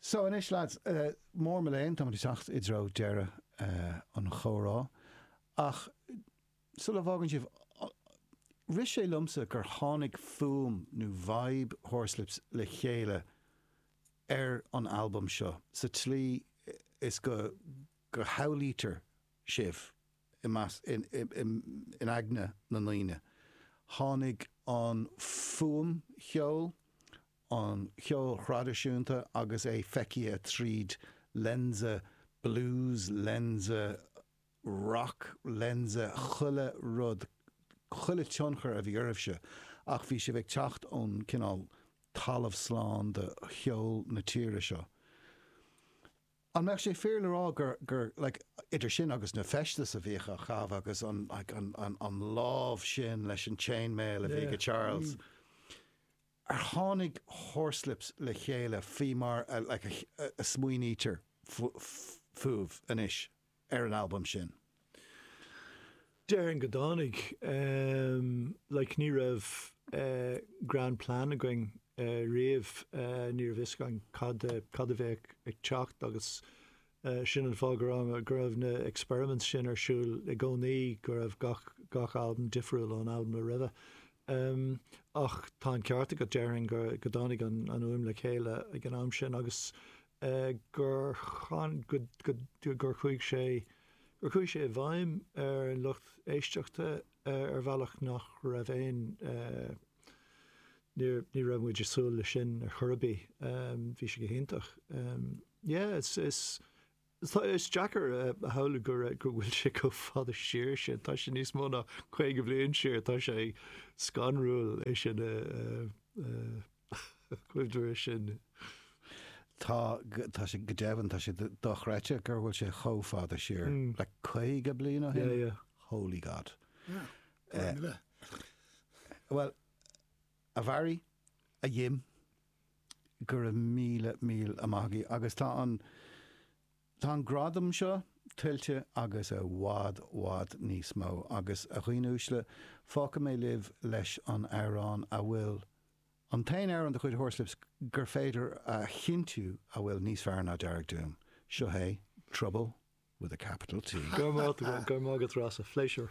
So anois lads, mo mhór léan, táimid ag teacht i dtreo deireadh an chomhrá, ach sula bhfágann sibh, rith sé liomsa gur tháinig fuaim nó vibe Horslips le chéile ar an albam seo sa tslí is go go shamhlaítear sibh i measc, in aigne na ndaoine. Tháinig an, fuaim cheoil, an cheoil thraidisiúnta agus é feicthe tríd lionsa blues, lionsa rac, lionsa chuile rud, chuile tionchar a bhí oraibhse ach bhí sibh ag teacht ón cineál talamh slán de cheol na tíre seo. An mbeadh sé fíor le rá gur, gur like idir sin agus na feistis a bhíodh á chaitheamh agaibh agus like an an lámh sin leis an chain mail a bhí ag Charles, Ar tháinig Horslips le chéile faoi mar a smaoinítear fúibh anois ar an albam sin? Déarfainn go dtáinig. Like, ní raibh grand plan againn riamh, ní raibh fhios againn cad a bheadh ag teacht agus Sin an fáth go raibh go raibh na experiments sin ar siúl i gcónaí, go raibh gach gach albam difriúil ón albam a roimhe. Ach tá an ceart agat, déarfainn go go dtáinig an an fhuaim le chéile ag an am sin agus gur chuaigh go go gur chuaigh sé gur chuaigh sé i bhfeidhm ar an lucht éisteachta ar bhealach nach raibh aon níor ní raibh muid ag súil le sin ar chor ar bith. Bhí sé go hiontach. Yeah, is, is, tá, is deacair a shamhlú go raibh, go bhfuil sé chomh fada siar sin, tá sé níos mó ná caoga bliain siar, tá sé scanrúil é sin a, a, a chuimhneamh é sin. Tá, tá sé, go deimhin, tá sé dochreidte go bhfuil sé chomh fada siar, like, caoga bliain ó shin? Yeah, yeah. Holy God. Yeah. Well, a Bharry, a Jim, Go raibh míle míle maith agaibh agus tá an tá an gradam seo tuillte agus i bhfad bhfad níos mó agus a dhaoine uaisle fágfaidh mé sibh leis an amhrán a bhfuil an t-aon amhrán de chuid Horslips gur féidir a chinntiú a bhfuil níos fearr ná Dearg Doom. Seo é Trouble with a capital T. Go raibh maith agat, go raibh maith agat Rossa, pléisiúr.